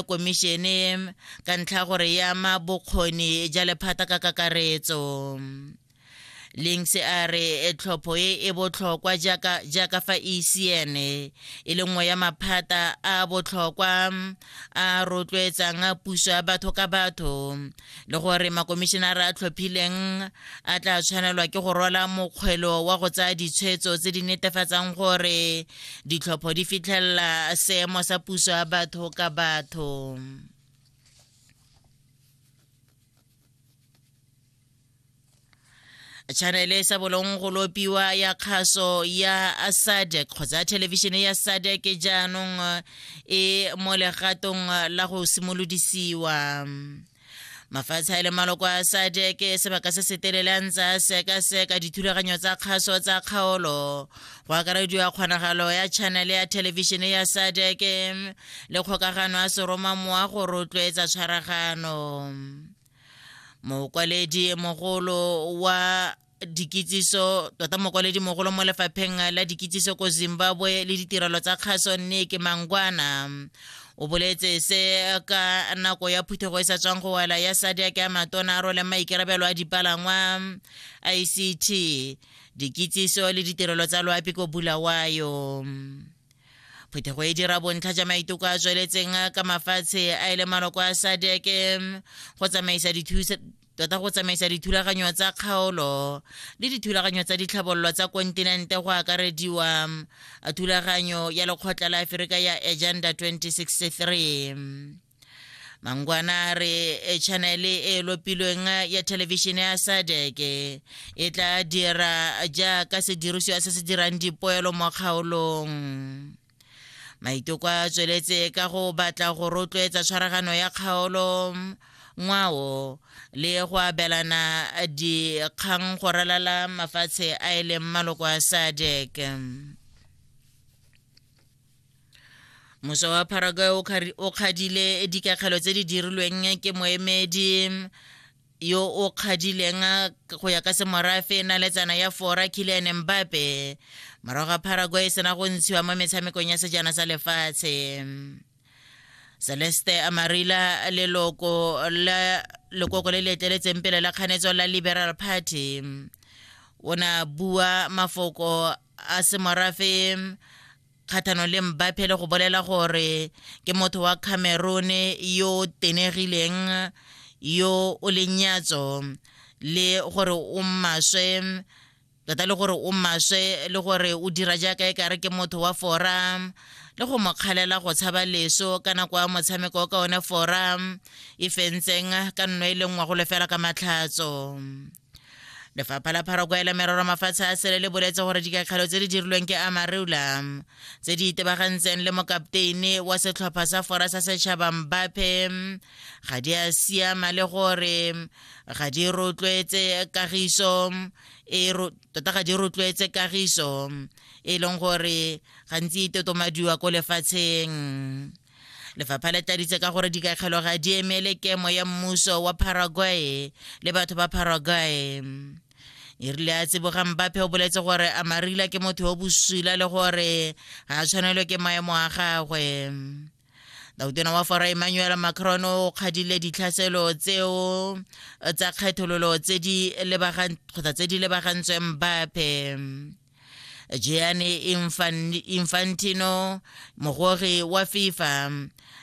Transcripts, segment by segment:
komišene ka ntlha gore ya ama bokgoni ja lephata ka kakaretso Links a re e tlhopho e e botlhokwa jaaka jaaka fa ECN e le nngwe ya maphata a botlhokwa a rotloetsang puso ya batho ka batho le gore makomišenara a tlhophileng a tla tshwanelwa ke go rwala mokgwelo wa go tsaya ditshwetso tse di netefatsang gore ditlhopho di fitlhelela seemo sa puso ya batho ka batho chanele e sa bolong go lopiwa ya kgaso ya sadec kgotsa thelebišene ya sadec jaanong e mo legatong la go simolodisiwa mafatshe a le maloko a sadec sebaka se se telele a ntse a sekaseka dithulaganyo tsa kgaso tsa kgaolo go akarediwa kgonagalo ya chanele ya thelebišene ya sadec le kgokagano ya seroma mowa go rotloetsa tshwaragano mokwaledi mogolo wa dikitsiso tota mokwaledi mogolo mo lefapheng la dikitsiso ko zimbabwe le ditirelo tsa kgaso nneke mangwana o boletse se ka nako ya phuthego e sa tswang go wela ya sadiak ya matona a role maikarabelo a dipalangwa ict dikitsiso le ditirelo tsa loapi ko bulawayo Phuthego e dira bontlha ja maiteko a tsweletseng ka mafatshe a e le maloko a sadeke go tsamaisa dithusa tota go tsamaisa dithulaganyo tsa kgaolo le dithulaganyo tsa ditlhabololo tsa kontinente go akarediwa thulaganyo ya lekgotla la aferika ya agenda 2063 mangwana re e chanele e, e lopilweng ya thelebišene ya sadeke e tla dira jaaka sedirisiwa se se dirang dipoelo mo kgaolong maiteko a tsweletse ka go batla go rotloetsa tshwaragano ya kgaolo ngwao le go abelana dikgang go ralala mafatshe a e leng maloko a sadek moso wa paraguay o kgadile dikakgelo tse di dirilweng ke moemedi yo o kgadileng go ya ka semorafe na le tsana ya fora kilian mbape morago ga paraguay e sena go ntshiwa mo metshamekong ya sejana sa lefatshe celeste amarila leloko la lekoko le le eteletseng pele la kganetso la liberal party o ne a bua mafoko a semorafe kgatlhanong le Mbappe le go bolela gore ke motho wa Cameroon yo o tenegileng yo o leng nyatso le gore o maswe tota le gore o maswe le gore o dira jaaka e kare ke motho wa fora le go mokgalela go tshaba leso ka nako ya motshameko ka one fora e fentseng ka nno e le nngwa go lefela ka matlhatso lefapha la pharoko ya merero mafatshe a sele le boletse gore dikakgelo tse di dirilweng ke amarula tse di itebagantseng le mokapteine wa setlhopha sa fora sa setšhaba mbape ga di a siama le gore ga di rotloetse kagiso e tota ga di rotloetse kagiso e leng gore gantsi e totomadiwa ko lefatsheng lefapha le tladitse ka gore dikakgelo ga di emele kemo ya mmuso wa paraguay le batho ba paraguay e rile a tseboga mbape o boletse gore a marila ke motho yo bosula le gore ga a tshwanelwe ke maemo a gagwe dautona wa fora emmanuel macron o kgadile ditlhaselo tseo tsa kgethololo tse di lebagantsweng mbape gianni infantino mogori wa fifa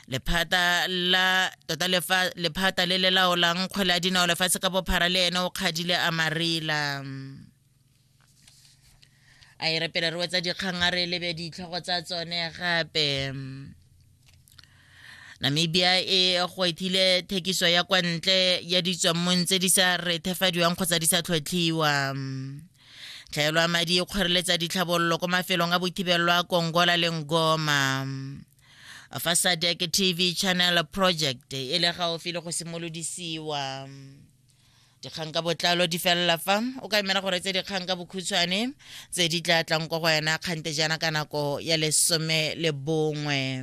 lephata la tota lephata le le laolang kgwele ya dinao lefatshe ka bophara le ene o kgadile a marila a e re pele re wetsa dikgang a re lebe ditlhogo tsa tsone gape namibia e gwetlhile thekiso ya kwa ntle ya ditswammong tse di sa rethefadiwang kgotsa di sa tlhotlhiwa Tlhaelo ya madi e kgoreletsa ditlhabololo kwa mafelong a bothibelo a Kongola le Ngoma. Fa SADC TV Channel Project e le gaufi le go simolodisiwa. dikgang ka botlalo di felela fa o ka emela gore tse dikgang ka bokhutshwane tse di tla tlang kwa go wena kgante jaana ka nako ya lesome le bongwe